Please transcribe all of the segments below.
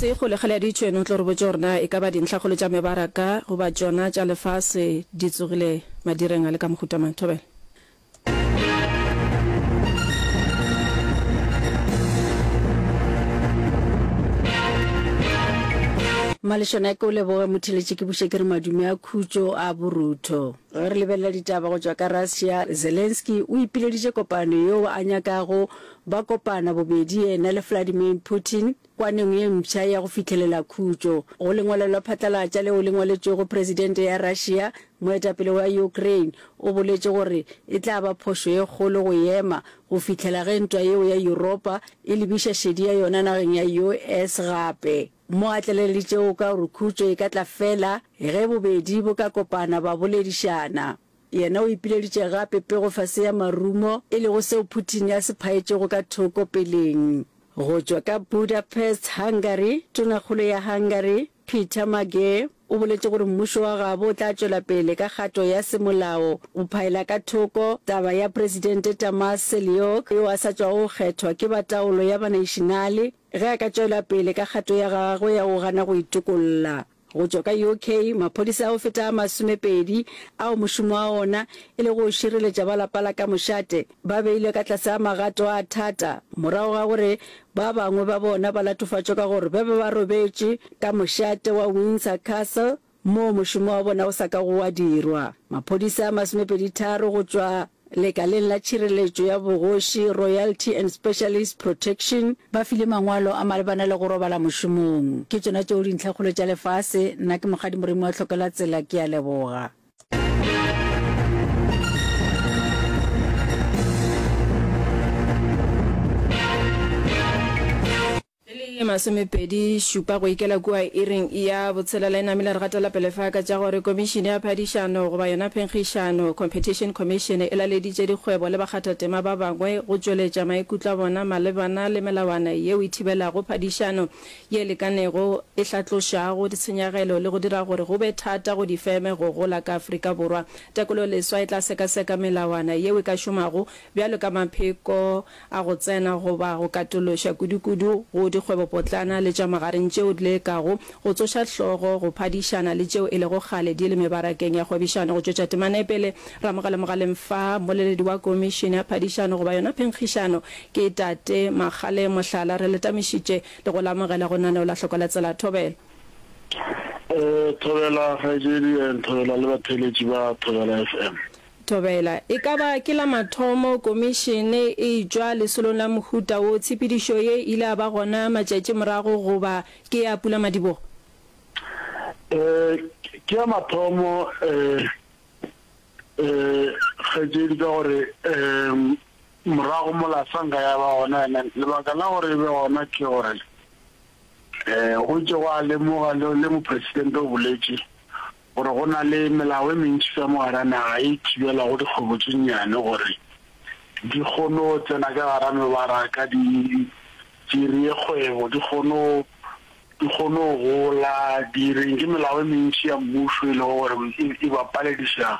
Sekgole kgale a ditšwe, no tlo re botša gore na e ka ba dintlhakgolo tša mebaraka goba tšona tša lefase di tsogile madireng a le ka mohuta mang? Thobela. Malešana ke o leboge motheletši ke buše ke re madume a khutšo a borutho. Ge re lebelela ditaba go tšwa ka Russia, Zelensky o ipileditše kopano yeo a nyakago Ba kopana bobedi yena le Vladimir Putin kwaneng ye mpsha ya go fihlelela khutšo. Go lengwalo la phatlalatša leo le ngwaletšwego Presidente ya Russia, moetapele wa Ukraine o boletše gore e tla ba phošo ye kgolo go ema go fihlela ge ntwa yeo ya Yuropa e lebiša šedi ya yona nageng ya US. Gape mo a tlaleleditšego ka gore khutšo e ka tla fela ge bobedi bo ka kopana ba boledišana. Yena o ipileditše gape pego fase ya marumo, e lego seo Putin a se phaetšego ka thoko peleng. Go tšwa ka Budapest, Hungary, Tonakgolo ya Hungary, Peter Magé, o boletše gore mmušo wa gabo o tla tšwela pele ka kgato ya semolao go phaela ka thoko taba ya Presidente Tamás Seljuk, yo a sa tšwago go kgethwa ke ba taolo ya Banaišenale, ge a ka tšwela pele ka kgato ya gagwe ya go gana go itokolla. Go tšwa ka UK, maphodisa a go feta a masomepedi ao mošomo wa ona e lego go šireletša ba lapa la ka mošate ba beilwe ka tlase ga magato a thata morago ga gore ba bangwe ba bona ba latofatšwe ka gore ba be ba robetše ka mošate wa Windsor Castle moo mošomo wa bona o sa kago wa dirwa. Maphodisa a masomepedi-tharo go tšwa Lekaleng la Tšhireletšo ya Bogoši, Royalty and Specialist Protection, ba file mangwalo a malebana le go robala mošomong. Ke tšona tšeo dintlhakgolo tša lefase. Nna ke Mokgadi Moremi wa Hlokela Tsela. Ke a leboga. E le ye masomepedi šupa go ikela kua iring ya botshelela e namile re gatela pele fa ka tša gore Komišene ya Phadišano goba yona Phenkgišano, Competition Commission, e laleditše dikgwebo le bakgathatema ba bangwe go tšweletša maikutlo a bona malebana le melawana yeo e thibelago phadišano ye lekanego, e hlatlošago ditshenyagelo le go dira gore go be thata go difeme go gola ka Afrika Borwa. Tekolo leswa e tla sekaseka melawana yeo e ka šomago bjalo ka mapheko, a go tsena goba go katološa kudukudu go dikgwebopotlana le tša magareng tšeo di lekago go tsoša hlogo go phadišana le tšeo e lego kgale di le mebarakeng ya kgwebišano go tšwetša temanepele Ramogale Mogaleng Fa mmoleledi wa Komišene ya Phadišano goba yona Phenkgišano ke Tate Magale Mohlala re letamišitše le go le amogela go naneo la Hloko la Tsela Thobela. Thobela kgaetšedi and Thobela le batheeletši ba Thobela FM. Thobela, E ka ba ke la mathomo Komišene e tšwa lesolong la mohuta wo, tshepedišo ye ile ya ba gona matšatši morago goba ke ya pulamadibogo? Ee, ke ya mathomo kgaetšedi ka gore morago mola sa nka ya ba gona and then lebaka la gore e be gona ke gore go itše gwa lemoga le Mopresidente o boletše gore go na le melao e mentši ka mo gare ga naga e e thibelago dikgwebo tše nnyane gore di kgono tsena ka gare ga mebaraka, di dirie kgwebo, di kgono di kgono gola, di reng. Ke melao e mentši ya mmušo e lego gore e e ba palediša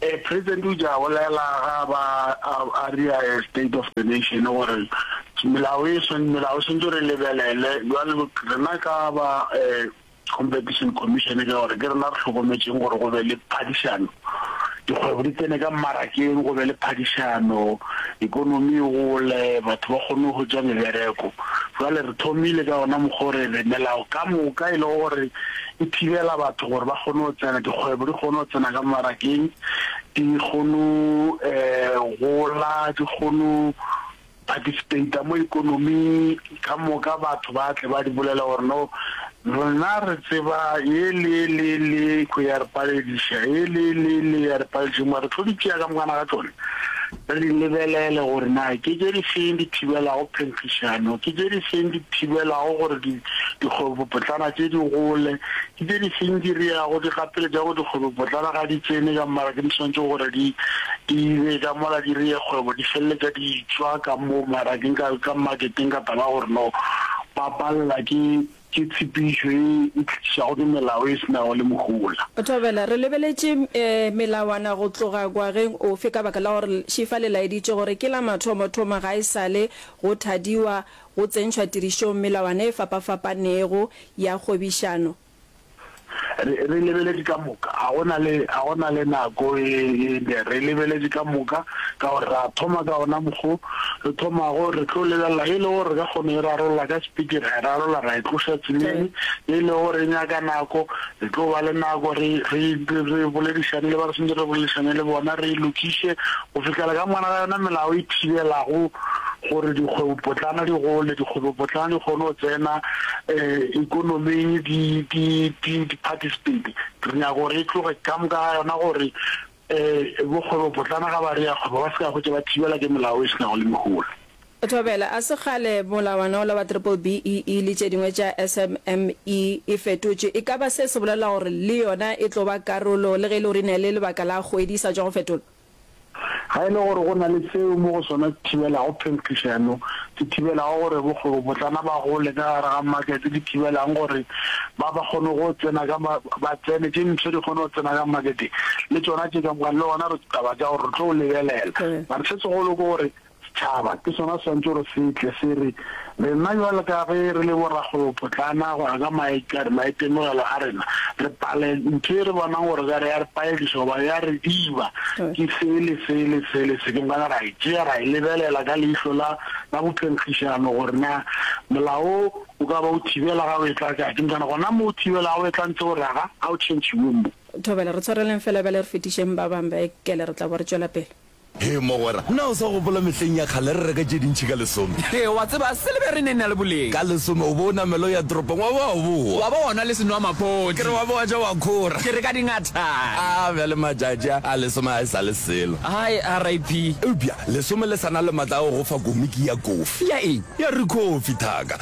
Ee, President o ja bolela ga ba a a ria a state of the nation gore melao e swan melao swantse re lebelele jwale rena ka ba competition commission ke gore ke rena re hlokometseng gore go be le phadišano dikgwebo di tsene ka mmarakeng go be le phadišano economy e gole batho ba kgone go ja mebereko jwale re thomile ka ona mokgore re melao ka moka e le gore e thibela batho gore ba kgone go tsena, dikgwebo di kgone go tsena ka mmarakeng, di kgone um gola, di kgone participate-a mo ikonoming ka moka, batho ba tle ba di bolela gore no rena re tseba ye le ye le ye le ye, ko ya re palediša ye le ye le ye le ya re palediša, mara re tlo di tšea ka mokana ga tšone. Re lebelele gore na ke tše di feng di thibelago phentlišano, ke tše di feng di thibelago gore dikgwebopotlana tše di gole, ke tše di feng di reago, di gapeletša gore dikgwebopotlana ga di tsene ka mola ke di swanetše gore di di be ka mola di reye kgwebo, di feleletša di tšwa ka mo marakeng ka ka marketeng ka taba ya gore no ba palela ke Ke tshepišo ye e tlišago ke melao e se nago le mohola. Thobela, re lebeletše melawana go tloga gwageng ofe ka baka la gore Šifa le laeditše gore ke la mathomothomo ga e sa le go thadiwa go tsentšhwa tirišong melawana e fapafapanego ya kgwebišano Re, re lebeletše ka moka. Ga go na le, ga go na le nako e, e ne. Re lebeletše ka moka, ka gore ra thoma ka wona mokg'o re thomago, re tlo lebelela. Ge e le gore re ka kgona go e rarolla ka sepiti, ra e rarolla, ra e tloša tseleng. Ge e le gore e nyaka nako, re tlo ba le nako re, re, re, re boledišane le ba re swantšego re boledišane le bona, re e lokiše go fihlela ka morago ga yona melao e thibelago gore dikgwebopotlana di gole, dikgwebopotlana di kgone go tsena um ekonoming di di di di participate. Re nyaka gore e tloge ka moka ga yona gore um bokgwebopotlana ga ba re ya kgwebo ba se ka hwetša ba thibela ke melao e se nago le mehola. Thobela, A se kgale molawana ola wa Triple BEE le tše dingwe tša SMME e fetotšwe? E ka ba se se bolela gore le yona e tlo ba karolo le ge e le gore e na le lebaka la kgwedi e sa tšwa go fetolwa? Ga e le gore go na le seo mo go sona se thibelago phelkišo ya no, se thibelago gore bokgwebopotlana ba gole ka gare ga makete, di thibelang gore ba ba kgone go tsena ka ba tsene, tše ntshwe di kgone go tsena ka makete, le tšona tše ka moka, le gona re taba tša gore re tlo lebelela. Mara se segolo ke gore Setšhaba ke sona se swanetše gore se tle se re, Rena bjalo ka ge re le borakgwebopotlana, go ya ka maitemogelo a rena, re pale ntho e re bonang gore ekare ya re paediša goba ya re diba ke se le se le se le se, ke gona ra e tšea ra e lebelela ka leihlo la bophenkgišano gore na molao wo o ka ba o thibela ga o etla kae. Ke gona gona mo o thibelago o etla ntse o re ga o tšhentšhiwe mo. Thobela, re tshwareleng fela bjale re fetišeng ba bang ba ekele re tla bo re tšwela pele. Hee mogwera, na o sa gopola mehleng ya kgale re reka tše dintši ka lesome? Hee, wa tseba, silebere e ne e na le boleng. Ka lesome o be o namela o ya toropong wa ba wa bowa. Wa ba wa nwa le senwamaphodi. Ke re wa be wa ja wa khora. Ke re ka dingathane. A bjale matšatši a, a lesome ga e sa le selo. Hai, RIP. Eupša lesome le sa na le matla a go go fa komiki ya kofi. Ya eng? Ya rikhofi, thaka.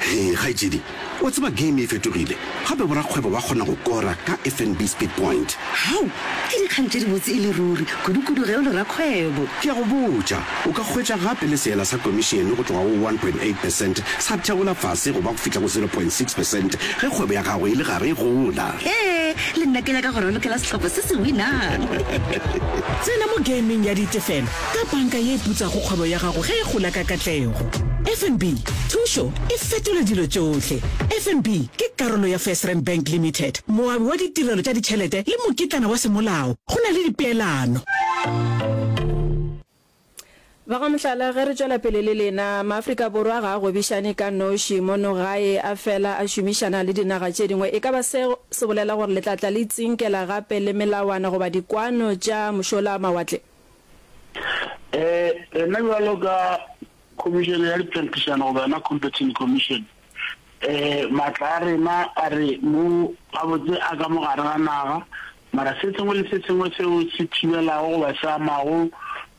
Hei kgaetšedi, o tseba game e fetogile, gape borakgwebo ba kgona go kora ka FNB Speed Point. Hau! Ke dikgang tše dibotse e le ruri, kudukudu ge o le rakgwebo. Ke a go botša, o ka hwetša gape le seela sa komišene go tloga go one point eight percent sa theola fase go ba go fihla go zero point six percent ge kgwebo ya gago e le gare e gola. Hee, le nna ke nyaka go ralokela sehlopha se se winang. Tsena mo gameng ya ditefelo ka banka ye e putsago kgwebo ya gago ge e gola ka katlego. FNB, thušo e fetola dilo tšohle. FNB ke karolo ya FirstRand Bank Limited, moabi wa ditirelo tša ditšhelete le mokitlana wa semolao go na le dipeelano. Ba ga mohlala, ge re tšwela pele le lena, Maafrika Borwa ga a gwebišane ka noši mono gae, a fela a šomišana le dinaga tše dingwe. E ka ba seo se bolela gore le tla tla le itsinkela gape le melawana goba dikwano tša mošola-mawatle? Eh, rena jalo ka khomišene ya diphentišano goba yona competition commission, eh maatla a rena a re mo gabotse a ka mogare ga naga, mara se sengwe le se sengwe seo se thibelago goba se amago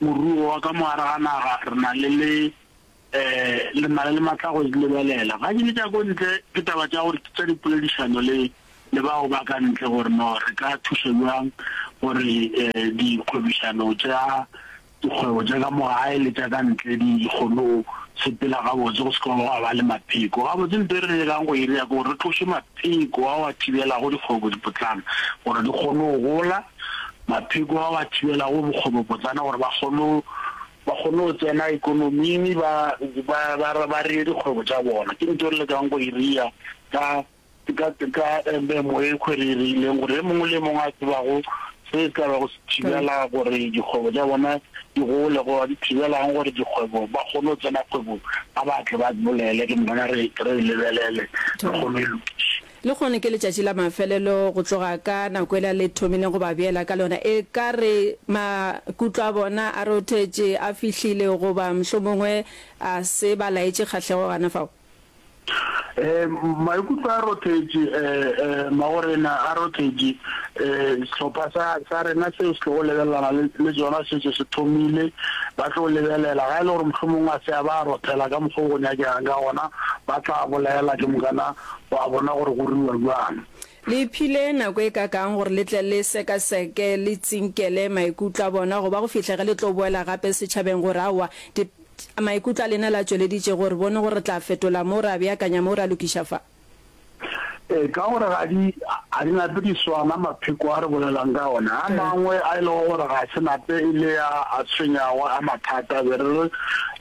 moruo wa ka mogare ga naga re na le le Lemala le matla go di lebelela. Ga ke le tša ko ntle, ke taba tša gore ke tša dipoledišano le le bao ba ka ntle gore no re ka thuša bjang gore dikgwebišano tša dikgwebo tša ka mo gae le tša ka ntle di kgone go sepela gabotse go se ka gwa ba le mapheko. Gabotse nto e re nyakang go e dira ke gore re tloše mapheko ao a thibelago dikgwebopotlana gore di kgone go gola, mapheko ao a thibelago bokgwebopotlana gore ba kgone ba kgone go tsena ekonoming ba ba ba ba reye dikgwebo tša bona. Ke nto re lekang go e ria ka ka ka memo e khwe re e reileng gore e mongwe le e mongwe a tsebago se se tla ba go se thibela gore dikgwebo tša bona di gole go ba di thibelang gore dikgwebo ba kgone go tsena kgwebong ba batle ba bolele ke mona re re lebelele re kgone e lokiše. Lehono ke letšatši la mafelelo go tloga ka nako yela le thomileng go ba beela ka lona. E ka re makutlo a bona a rothetše, a fihlile, goba mohlomongwe a se ba laetše kgahlego gana fao. Ee, maikutlo a rothetše. Ee, magorena a rothetše. Ee, sehlopha sa, sa rena seo se tlogo lebelelana le, le sona se šetše se thomile. Ba tlo lebelela. Ga e le gore mohlomongwe a se a ba rothela ka mokgwa o go nyakegang ka gona, ba tla bolaela ke mokana O a bona gore go ruwa bjang. Le iphile nako e kakaang gore le tle le sekaseke, le tsinkele maikutlo a bona go ba go fihla ge le tlo boela gape setšhabeng gore aowa di, maikutlo a lena le a tšweleditše gore bone gore re tla fetola mo, ra beakanya mo, ra lokiša fa? Ee, ka gore ga di, ga di nape di swana mapheko a re bolelang ka ona. A mangwe a e lego gore ga se nape e le a a tshwenyago, a mathata, be re re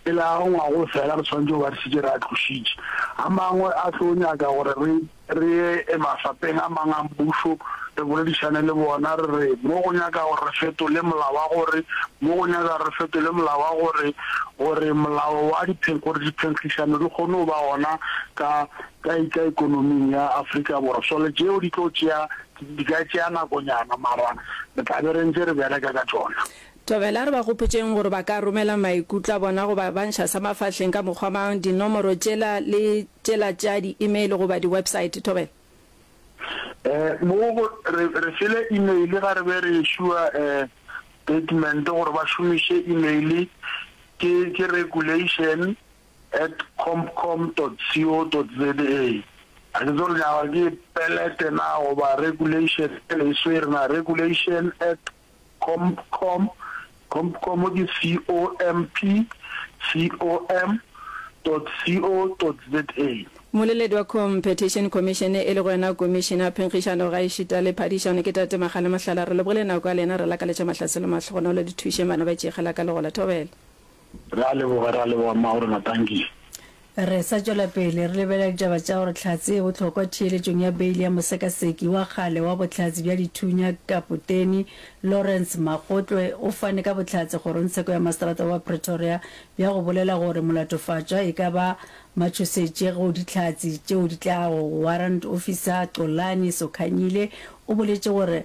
pele a rongwago fela re swanetše go ba šetše re a tlošitše. A mangwe a tlo nyaka gore re re ye mafapeng a mang a mmušo re boledišane le bona, re re mo go nyaka gore re fetole molao wa gore, mo go nyaka gore re fetole molao wa gore, gore molao wa diphen, gore diphenhlišano di kgone go ba gona ka, ka, ka ekonoming ya Afrika Borwa. Šole tšeo di tlo tšea, di ka tšea nakonyana, mara re tla be re ntše re bereka ka tšona. Thobela, re ba gopotšeng gore ba ka romela maikutlo a bona goba ba ntšha sa mafahleng ka mokgwa mang, dinomoro tšela le tšela tša di email goba di website. Thobela. Eh, mo go, re, re file email ga re be re issua eh, statement gore ba šomiše email, ke, ke regulation at compcom dot co dot za. Ga ke tsebe gore nyaka ke pelete na goba regulation, e swere na, regulation at Compcom, Compcom ke C-O-M-P-C-O-M.C-O.Z-A. Moleledi wa Competition Commission, e lego yona Komišene ya Phenkgišano gaešita le Phadišano, ke Tate Makhale Mohlala. Re lebogile nako ya lena, re lakaletša mahlaselo mahlogonolo le thušeng bana ba tšeegela ka legola. Thobela. Re a leboga, re a leboga mma gore na tanki. Re sa tšwela pele, re lebelela ditaba tša gore tlhatse e bohlokwa theeletšong ya beili ya mosekaseki wa kgale wa bohlatse bja dithunya Kapoteni Lawrence Magotlwe o fane ka bohlatse kgorongtsheko ya maseterata wa Pretoria bja go bolela gore molatofatšwa e ka ba matšhosetše go dihlatse tšeo di tlago. Warrant Officer Xolani Sokhanyile o boletše gore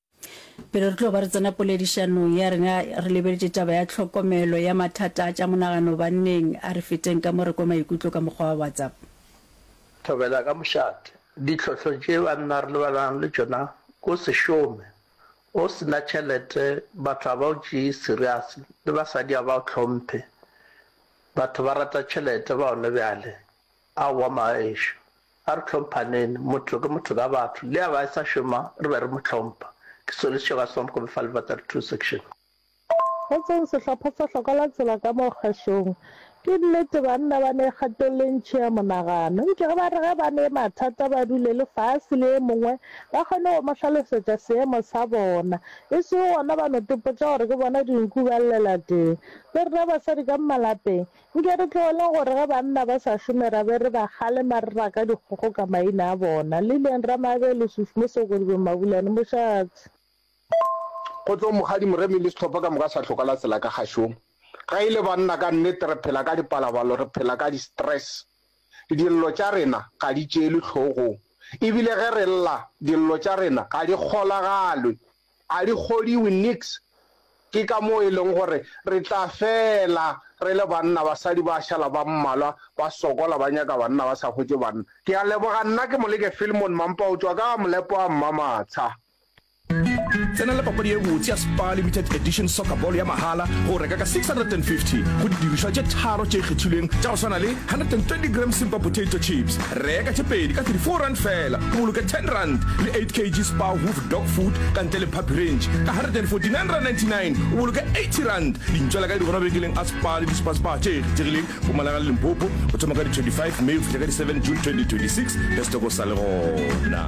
Pele re tlo ba re tsena poledišanong ya rena, re lebeletše taba ya tlhokomelo ya mathata a tša monagano. Banneng, a re feteng ka mo re kwe maikutlo ka mokgwa wa WhatsApp. Thobela ka mošate. Ditlhohlo tše banna re lebanang le tšona ke o se šome, o se na tšhelete, batho ga ba o tšee serious le basadi ga ba o hlomphe. Batho ba rata tšhelete ba gone bjale, Aowa maešu, a re hlomphaneng, motho ke motho ka batho, le a ba a sa šoma re be re mo hlompha. Ke Solly Sechega Swamp Kobe fa Lebatari Two Section. Kgotsong sehlopha sa Hloka la Tsela ka mo kgašong. Ke nnete banna ba ne kgatong le ntši ya monagano. Eupša ge ba re ge ba ne mathata ba dule le fase le e mongwe ba kgone go mo hlalosetša seemo sa bona. E sego gona ba no topotša gore ke bona dinku ba llela teng. Le rena basadi ka malapeng Nke re tlogele gore ge banna ba sa šome ra be re ba kgalema re raka dikgogo ka maina a bona, Lilian Ramabelo, Susu Mosoko, Lebo Mabulane, Mošaatsi. Kgotlong Mokgadi Moremi le sehlopha ka moka sa Hloka la Tsela ka Kgašong. Ge e le banna ka nnete re phela ka dipalabalo, re phela ka di-stress. Dillo tša rena ga di tšeelwe hlogong ebile ge re lla, dillo tša rena ga di kgolagalwe. A di kgodiwe niks. Ke ka moo e leng gore re tla fela re le banna, basadi ba šala ba mmalwa, ba sokola, ba nyaka banna, ba sa hwetše banna. Ke a leboga. Nna ke Moleke Filmon Mampa o tšwa ka Molepo wa Mmamatsha. Tsena le papadi e botse ya Spar Limited Edition Soccer Ball ya mahala go reka ka R650 go didirišwa tše tharo tše kgethilweng tša go swana le 120 grams Simba Potato Chips, Reka tše pedi ka R34 feela o boloke R10 le 8 kg Spar Hoof Dog Food ka ntle le Puppy Range ka R149.99 o boloke R80. Di ntšwela kae? Di gona mabenkeleng a Spar le di-Spar Spar tše kgethegileng Mpumalanga le Limpopo go thoma ka di 25 May go fihla ka di 7 June 2026. Ge setoko sa le gona.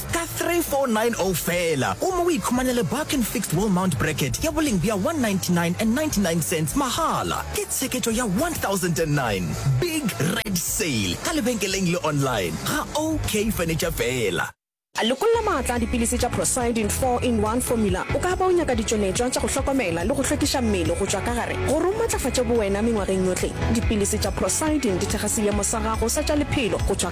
Ka 3490 feela, o mo o ikhumanele Barkin Fixed Wall Mount Bracket ya boleng bja 199.99 mahala. Ke tsheketšo ya 1009. Big Red Sale ka lebenkeleng le online ga OK Furniture feela. Lekolla maatla a dipilisi tša Procyldin Four in One Formula. O ka ba o nyaka ditšweletšwa tša go hlokomela le go hlwekiša mmele go tšwa ka gare gore o matlafatše bowena mengwageng yohle. Dipilisi tša Procyldin di thekga seemo sa gago sa tša lephelo go tšwa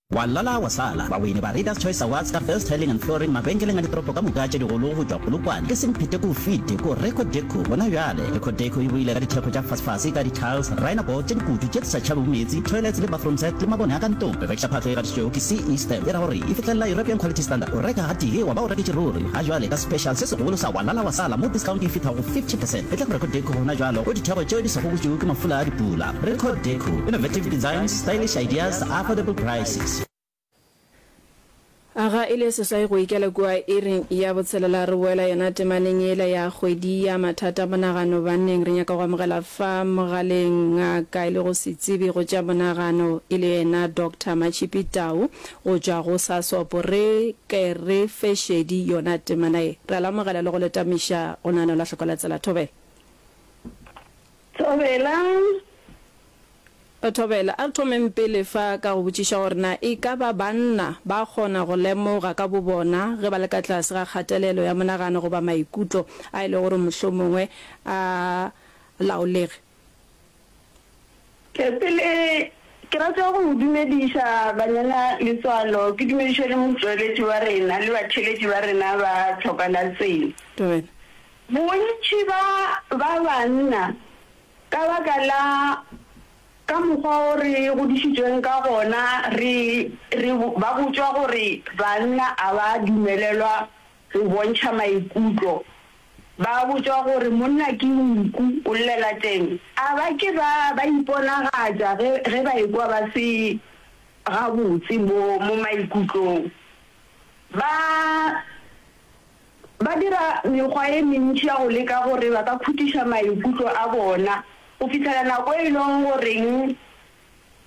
Wa lala wa sala! Bawini ba Readers Choice Awards ka Best Tiling and Flooring mabenkeleng a ditoropo ka moka tše digolo go tšwa Polokwane ke Semphete-Koofite ko Reco Deco gona bjale. Reco Deco e boile ka dithekgo tša fasefase ka di-tiles, rhino board tše dikutu tše di sa tšhabego meetse, toilets le bathroom set le mabone a ka ntlong. Re rekiša phahlo e gatišitšwego ke CE stamp e ra gore e fihlelela European Quality Standard. O reka gatee wa ba o reketše ruri! Ga jwale ka special se segolo sa Wa lala wa sala mo discount e fihla go 50 percent e tla go Reco Deco gona bjalo go dithekgo tšeo di sa gobotšwego ke mafula a dipula. Record Deco, innovative designs, stylish ideas, affordable prices. Aga e le seswai go ikela kua iring ya botshelela re boela yona temaneng yela ya kgwedi ya mathata a monagano. Banneng re nyaka go amogela fa mogaleng ngaka e lego setsebi go tša monagano e le yena Doctor Matshipi Tau go tšwa go SASOP. Re ke re fe šedi yona temana ye. Re a le amogela le go le tamiša go naganelwa hloko la tsela thobela. Thobela. Thobela, a re thomeng pele fa ka go botšiša gore na e ka ba banna ba kgona go lemoga ka bobona ge ba le ka tlase ga kgatelelo ya monagano goba maikutlo a e lego gore mohlomongwe a laolege? Pele, ke rata go go dumediša Banyana Letswalo, ke dumediše le motšweletši wa rena le batheeletši ba rena ba Tlhoka la Tsela. Dumela. Bontši ba ba banna, ka baka la ka mokgwa o re godišitšweng ka gona, re, re, ba botšwa gore banna a ba dumelelwa go bontšha maikutlo. Ba botšwa gore monna ke nku, o llela teng. A ba ke ba, ba iponagatša ge, ge ba ekwa ba se gabotse mo, mo maikutlong? Ba, Ba dira mekgwa e mentši ya go leka gore ba ka khutiša maikutlo a bona, go fihlela nako e lego goreng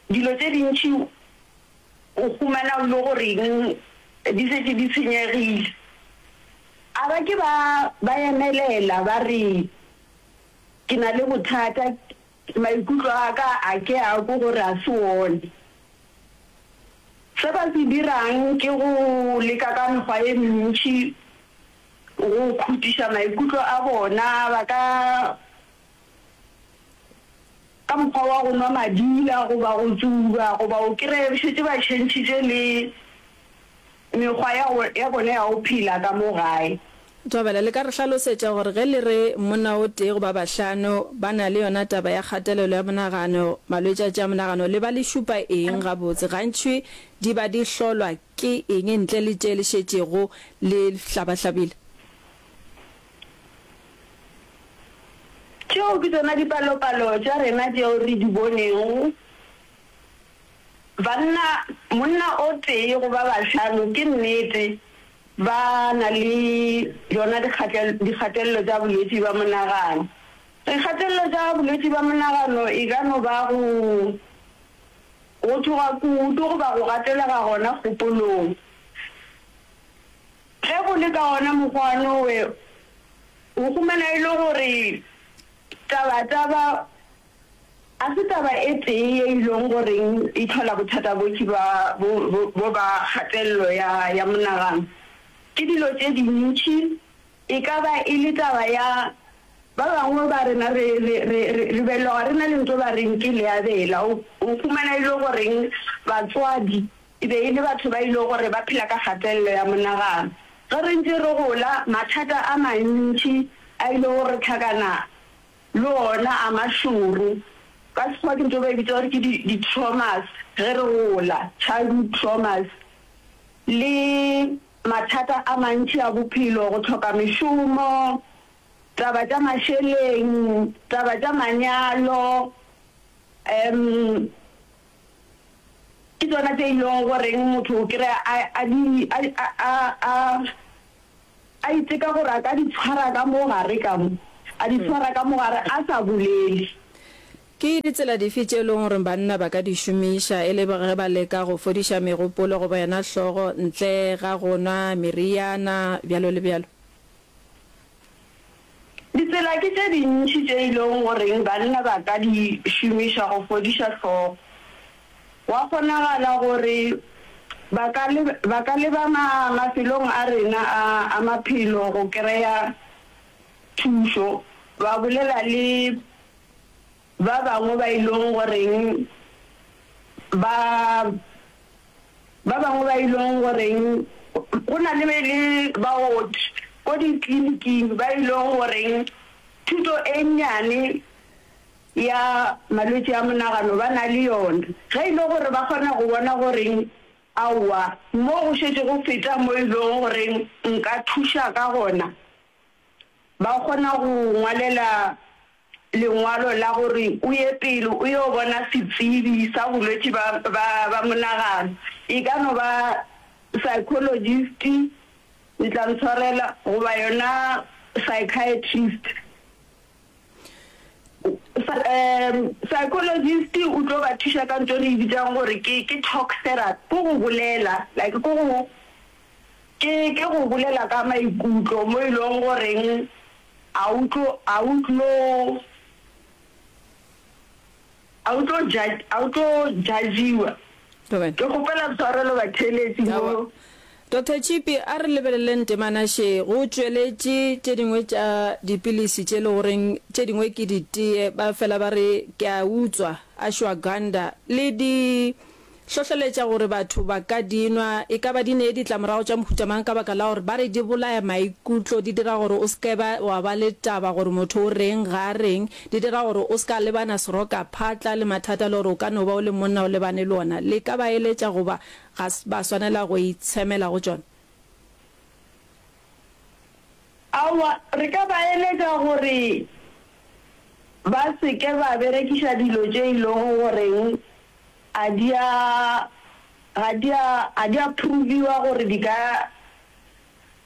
dilo tše dintši o humana o le goreng di šetše di senyegile. A ba ke ba ba emelela ba re, Ke na le bothata. Maikutlo a ka a ke a ko gore a se one. Se ba se dirang ke go leka ka mekgwa e mentši go khutiša maikutlo a bona, ba ka ka mokgwa wa go nwa madila goba go tsuba goba o kry-e šetše ba tšhentšhitše le Mekgwa ya, ya bona ya go phela ka mo gae. Thobela, le ka re hlalosetša gore ge le re monna o tee goba bahlano ba na le yona taba ya kgatelelo ya monagano, malwetši a tša monagano, le ba le šupa eng gabotse? Gantši di ba di hlolwa ke eng ntle le tše le šetšego le hlabahlabile? Tšeo ke tšona dipalopalo tša rena tšeo re di bonego. Banna, monna o tee go ba bahlano, ke nnete, ba na le bjona dikgatelelo tša bolwetši bja monagano. Dikgatelelo tša bolwetši bja monagano e ka no ba go go tšhoga kudu goba go gatelega gona kgopolong. Ge go le ka wona mokgwa nowe o humana e le gore taba taba. A se taba e tee ye ilong go reng e hlola bothata bokhwi ba bo bo ba kgatello ya ya monagano. Ke dilo tše dintši, e ka ba e le taba ya ba bangwe ba rena re re re re re beloga re na le nto ba reng ke leabela. O o humana e le go reng batswadi e be e le batho ba ilego gore ba phela ka kgatello ya monagano. Ge re ntše re gola, mathata a mantši a ilego go re hlakana Le ona a mašoro. Ka Sekgowa ke nto ba e bitsa gore ke di-traumas ge re gola, childhood traumas. Le mathata a mantši a bophelo, go tlhoka mešomo, taba tša mašeleng, taba tša manyalo um ke tsona tše e lego goreng motho o kry-a a di A iteka gore a ka di tshwara ka mo gare, ka mo, a di tshwara ka mo gare, a sa bolele. Ke ditsela dife tše e lego gore banna ba ka di šomiša e le ge ba leka go fodiša megopolo goba yona hlogo ntle ga go nwa meriana, bjalo le bjalo? Ditsela ke tše dintši tše e lego goreng banna ba ka di šomiša go fodiša hlogo. Gwa kgonagala gore ba ka ba ka leba ma mafelong a rena a a maphelo go kry-a thušo, ba bolela le. Ba bangwe ba ilong go reng ba, ba bangwe ba ilong go reng, go na le be le baoki ko ditliliniking ba ilong go reng thuto e nnyane ya malwetši a monagano ba na le yona, ge e le gore ba kgona go bona go reng aowa mo go šetše go feta mo e lego go reng nka thuša ka gona, ba kgona go ngwalela. lengwalo la gore o ye pele o yo bona setsebi sa bolwetši ba, ba, ba monagano. E ka no ba psychologist, le tla ntshwarela, goba yona psychiatrist. Um, psychologist o tlo ba thuša ka ntho e re e bitsang gore ke, ke talk therapy, ke go bolela, like ke go, ke, ke go bolela ka maikutlo mo e leng goreng, A o tlo, a o tlo, a o tlo ja, a o tlo jajiwa. Amen. Ke kgopela tshwarelo batheeletsi Awa. mo. Doctor Chipi, a re lebeleleng temana še. Go tšweletše tše dingwe tša dipilisi tše le goreng tše dingwe ke ditee, ba fela ba re ke a utswa, ashwagandha, le di. hlohleletša gore batho ba ka di nwa. E ka ba di ne ditlamorago tša mohuta mang ka baka la gore ba re di bolaya maikutlo, di dira gore o se ka ba wa ba le taba gore motho o reng, ga a reng, di dira gore o se ka lebana serokaphatla le mathata le gore o ka no ba o le monna o lebane le ona. Le ka ba eletša goba ga ba swanela go itshemela go tšona. Aowa, re ka ba eletša gore ba se ke ba berekiša dilo tše e lego goreng a di a, ga di a, ga di a phurubiwa gore di ka,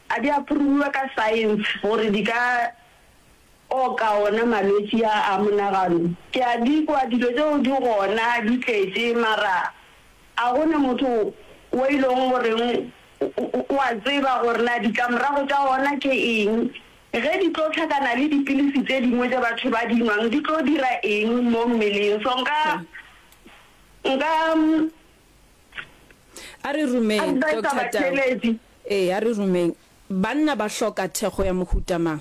ga di a phurubiwa ka science gore di ka O ka ona malwetši a a monagano. Ke a di kwa dilo tšeo di gona di tletše, mara a go ne motho wo e lego goreng o a tseba gore na ditlamorago tša ona ke eng, ge di tlo hlakana le dipilisi tše dingwe tše batho ba di nwang di tlo dira eng mo mmeleng. So nka, nka A re rumeng adviser Doctor Tau. batšheletši. Ee, a re rumeng. Banna ba hloka thekgo ya mohuta mang?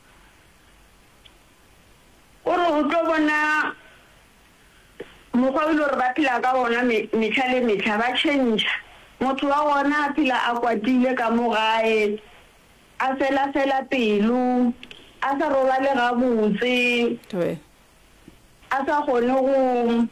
O re o tlo bona mokgwa o e le gore ba phela ka wona mehla le mehla, ba tšhentšha. Motho wa gona a phela a kwatile ka mo gae, a fela-fela pelo, a sa robale gabotse, a sa kgone go.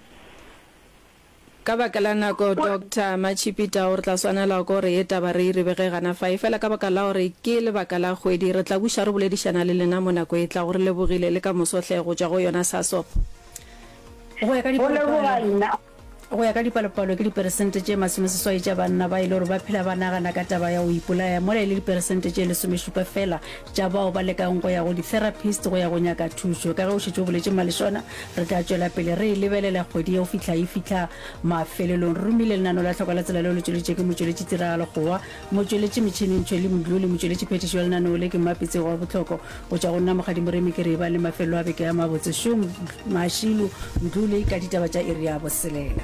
Ka baka la nako, Doctor Machipita o re tla swanela ko re ye taba re iribe ge gana fa. Efela ka baka la gore ke lebaka la kgwedi, re tla buša re boledišana le lena mo nako e tlago. Re lebogile le ka moso hle go tšwa go yona SASOP. Go ya ka dipalopalo, go ya ka dipalopalo ke diperesente tše masomeseswai tša banna ba e le gore ba phela ba nagana ka taba ya go ipolaya, mola e le diperesente tše lesomešupa feela tša bao ba lekang go ya go di-therapist go ya go nyaka thušo. Ka ge o šetše o boletše Malešona, re tla tšwela pele re e lebelela kgwedi ye go fihla e fihla mafelelong. Re romile lenano la tlhoko la tsela leo le tšweletšwe ke motšweletši tiragalo kgowa, motšweletši metšhineng Tshweli Mdlu le motšweletši phetišo ya lenaneo le ke Mmapi Tsego wa bohloko go tšwa go nna Mokgadi Moremi ke re e bang le mafelelo a beke a mabotse šo Mashilu Mdlu le ka ditaba tša iri ya boselela.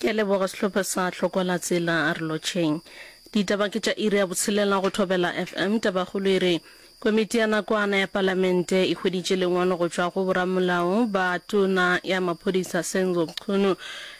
Ke a leboga sehlopha sa Hlokwalatsela re lotšheng. Ditaba ke tša iri ya botshelela go Thobela FM. Tabakgolo e re, Komiti ya nakwana ya Palamente e hweditše lengwalo go tšwa go boramolao ba Tona ya Maphodisa Senzo Mchunu.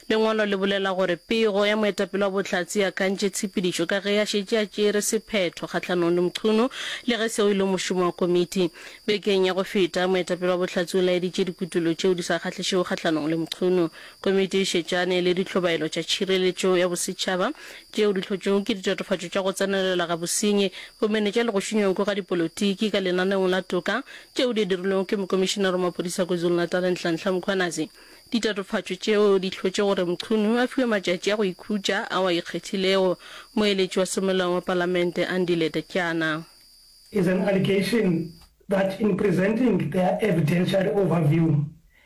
Lengwalo le bolela gore pego ya moetapele wa Bohlatse e akantše tshepedišo ka ge a šetše a tšere sephetho kgahlanong le Mchunu le ge seo e le mošomo wa komiti. Bekeng ya go feta, moetapele wa Bohlatse o laeditše dikutollo tšeo di sa kgahlišego kgahlanong le Mchunu. Komiti e šetšane le dihlobaelo tša tšhireletšo ya bosetšhaba tšeo di hlotšwego ke ditatofatšo tša go tsenelela ga bosenyi, go menetša le go šunyweng ga dipolotiki ka lenaneong la toka tšeo di dirilwego ke Mokomišinara wa Maphodisa KwaZulu-Natal Nhlanhla Mkhwanazi. Ditatofatšo tšeo di hlotše gore Mchunu a fiwe matšatši a go ikhutša ao a ikgethilego, moeletši wa semolao wa Palamente Andile Tatyana. is an allegation that in presenting their evidentiary overview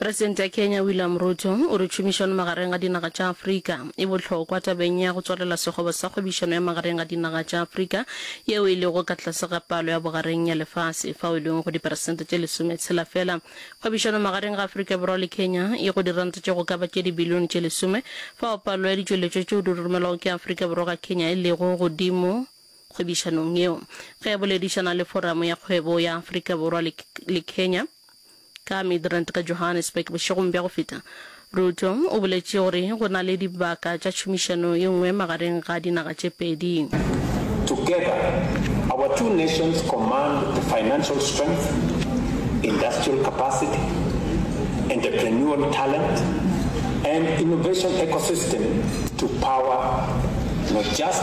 Presidente ya Kenya William Ruto o re tšhomišano magareng ga dinaga tša Afrika e bohlokwa tabeng ya go tswalela sekgoba sa kgwebišano ya magareng ga dinaga tša Afrika yeo e lego ka tlase ga palo ya bogareng ya lefase fao e lego go diperesente tše lesometshela fela. Kgwebišano magareng ga Afrika Borwa le Kenya e go diranta tše go ka ba tše dibilione tše lesome fao palo ya ditšweletšwa tšeo di romelwago ke Afrika Borwa ga Kenya e lego godimo kgwebišanong yeo. Ge a boledišana le Foramo ya Kgwebo ya Afrika Borwa le, le Kenya ka Midrand ka Johannesburg bošegong bja go feta, Ruto o boletše gore go na le dibaka tša tšhomišano ye nngwe magareng ga dinaga tše pedi. Together, our two nations command the financial strength, industrial capacity, entrepreneurial talent, and innovation ecosystem to power not just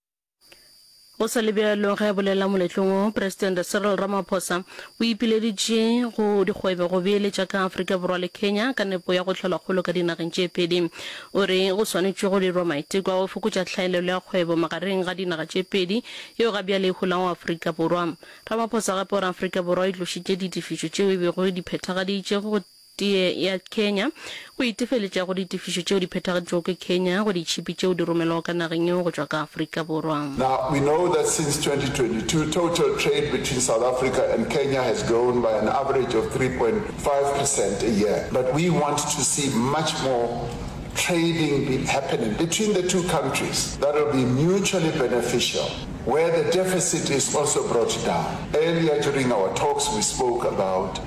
Go sa le bjalo, ge a bolela moletlong wo, Presidente Cyril Ramaphosa o ipileditše go dikgwebo go beeletša ka Afrika Borwa le Kenya ka nepo ya go hlola kgolo ka dinageng tše pedi. O re go swanetšwe go dirwa maiteko a go fokotša hlaelelo ya kgwebo magareng ga dinaga tše pedi yeo ga bjale e holago Afrika Borwa. Ramaphosa gape o re Afrika Borwa e tlošitše ditefišo tšeo e bego e di phethagaditše go Tee ya Kenya go itefeletša go ditefišo tšeo di phethagaditšwego ke Kenya go ditšhipi tšeo di romelwago ka nageng yeo go tšwa ka Afrika Borwa. Now, we know that since 2022, total trade between South Africa and Kenya has grown by an average of 3.5 percent a year, but we want to see much more trading be happening between the two countries that will be mutually beneficial, where the deficit is also brought down. Earlier during our talks, we spoke about.